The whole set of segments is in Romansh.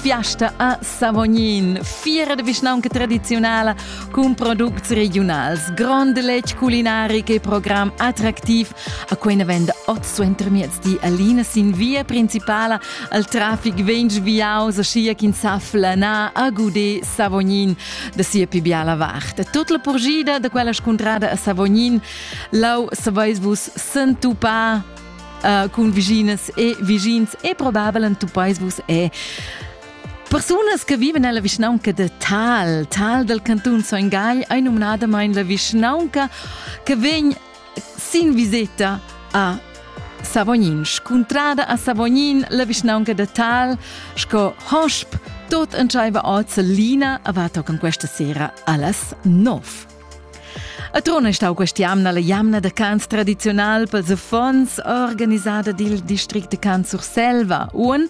Fiasta a Savognin. Fiera de vischnaunca tradizionala cun products regionals, grond letg culinaric e program attractiv. A quei ne venda oz suenter miezdi Alina sin via principala al trafic vegn sviaus aschia ch'in sa flanar a Gudé Savognin da sia pi biala vart. Tut la purgida de quella scuntrada a Savognin, lau saveis vus s'entupar uh, cun viginas e vigins e probabel en tu pais vus è Persunas che vivono nella vischnaunca de Tal, Tal del canton Soingai, è nominadamente la vischnaunca che venne sin visita a Savognin. Contrada a Savognin, la vischnaunca de Tal, sco hosp, tot entscheiva oz Lina, avato con questa sera allas 9. A Trun è stau questa jamna la jamna da cants tradiziunal pels affons organisada dil district de Cant Surselva. Un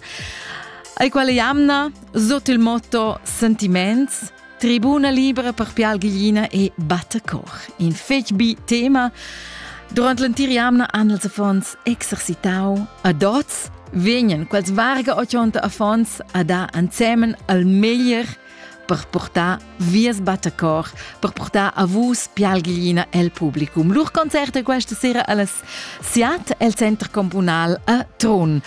ei quella jamna sot il motto Sentiments tribuna libera per Pial Gliina e Battacoch. In fetg bi tema. Durant l'entir jamna han els affons exercitau a dots vegnan quels varga 80 affons a da ansemen al meglier per portar vies battacor, per portar a vus pialglina el publicum. Lur concert è questa sera alles Siat el Center Communal a Trun.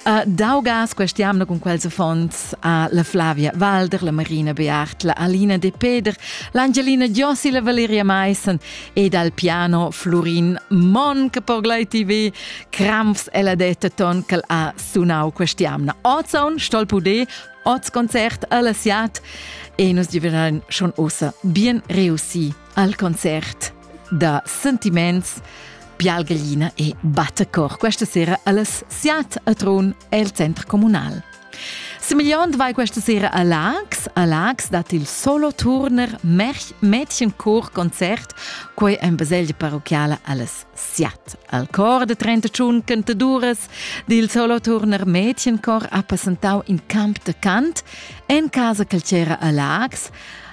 Uh, Daugas, questiamna con quels fonds a la Flavia Walder, la Marina Beart, la Alina De Peder, l'Angelina Giossi, la Valeria Meissen ed al piano Florin Mon che per Glei TV Kramfs e la detta ton che ha sunau questiamna. Ozon, stol pude, Oz concert alla Siat e nus giveran schon ossa bien reussi al concert da sentiments Pialgalina e Battecor questa sera alles Siat a Tron el centro comunal. Semigliond vai questa sera a Lax. A Lax dat il solo turner Mädchenkor Konzert, quei en baselgia parochiala alles Siat al cor de 31 cantaduras dil Soloturner Mädchenkor ha passentau in camp de cant en casa che c'era a Lags.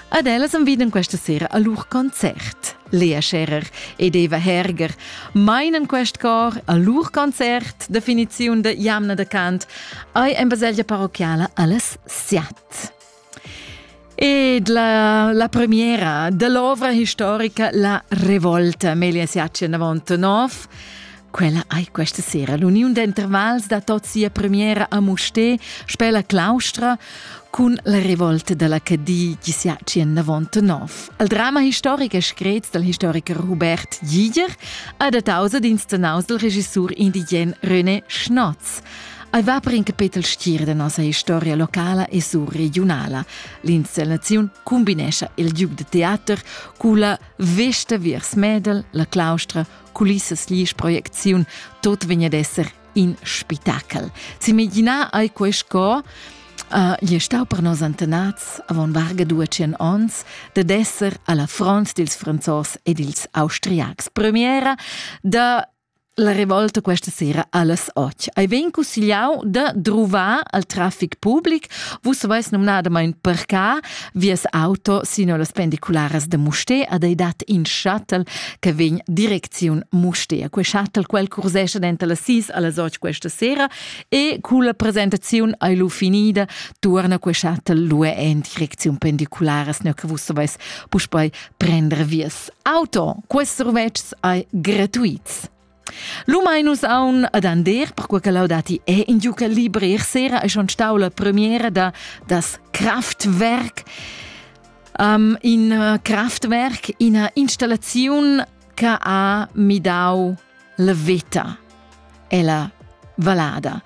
Ad ellas enviden questa sera a lur concert. Lea Scherer ed Eva Herger meinen quest cor a lur concert, definiziun de jamna de cant, ei en baselgia parochiala alles Siat. Ed la, la premiera dell'ovra historica La Revolta, Amelia Siachen avant nov. Quella ei questa sera l'uniun d'intervals da tot sia premiera a Musté, Spella Claustra, cun la revolta della Cadi chi sia tschien davant nov. El drama historic e scret dal historiker Hubert Giger ha dataus ad instanaus dal regissur indigen René Schnotz. Ei va per in capetel stir da nossa historia locala e surregiunala. L'installaziun combinescha il giug de teater cu la vesta viers Medel, la claustra, culissas lies proiecziun, tot vegn ad esser in spitachel. S'imaginar ei quei sco Uh, gli è stau per nos antenats avon varga duecien ons dad esser alla front dils franzos ed dils austriacs. Premiera da La revolta questa sera alles och. Ei vegn cussigliau da druvar al traffic public. Vus veis numnadamain parcar vies auto sino las pendicularas de Musté ad ei dat in shuttle che vegn direcziun Musté. Quei shuttle quel cursescha denter las 6 alles och questa sera e cu la presentaziun ei lu finida tuorna quei shuttle lu en direcziun pendicularas, ne che vus veis puspei prender vies Auto, quests survetschs ei gratuits. Lu mai nus aun ad ander, perquei che Laudati è in giuca libri sera e schon stau la premiera da das Kraftwerk. Um, in uh, Kraftwerk, ina installaziun che ha midau la vita Ella valada.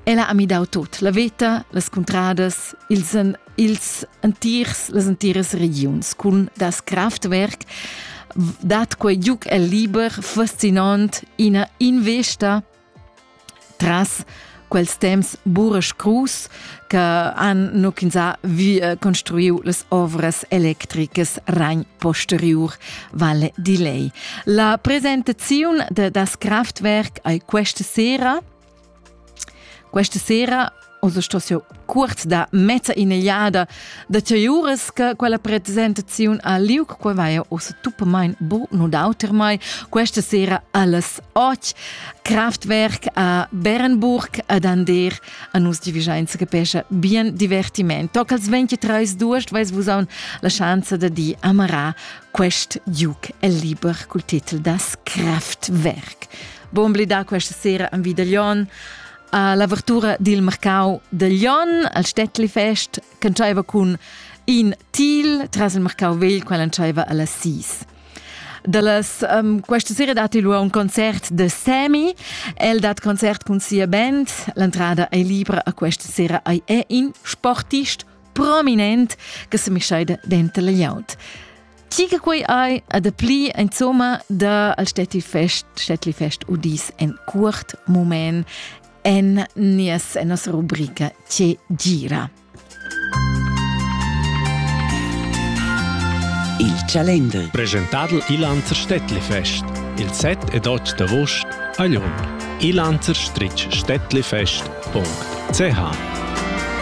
Ella ha midau tot, la veta, las cuntradas, ils, ils entirs, las entiras regiuns cun das Kraftwerk dat quei giuc el liber fascinant ina investa tras quels temps Buresch Cruz che han nuchinsa vi eh, construiu las ovras electricas Rhein posteriur Valle di Lei. La presentazione de das Kraftwerk ei questa sera. Questa sera, also sto jo cuort da mezza inegliada da teuras che quella presentaziun a liuc qua vaia ossa tuppamain bo no d'auter mai questa sera alles och Kraftwerk a Berenburg ad Ander a nus divigiainza che pescha bien divertiment toc als 23 d'uost vais vus aun la schanza da di amarà quest duc el liber cul titel das Kraftwerk Bon blidà questa sera am Vidaglion a l'avertura dil marcau de Lion, al Stettli Fest, che entscheiva cun in til tras il marcau vegl, quel entscheiva alla sis. Dallas, um, questa sera dat il un concert de Semi. El dat concert cun sia band. L'entrada è libra a questa sera è è in sportist prominent che se mischaida dentro le Ti che quei ei a dapli insomma da al Städti Fest, Städtli Fest udis en curt moment en nies en nostra rubrica Che gira. Il Chalender. Presentadl Ilanzer Städtli Fest. Il set ed oct d'avost a Lyon. Ilanzer-Städtli Fest.ch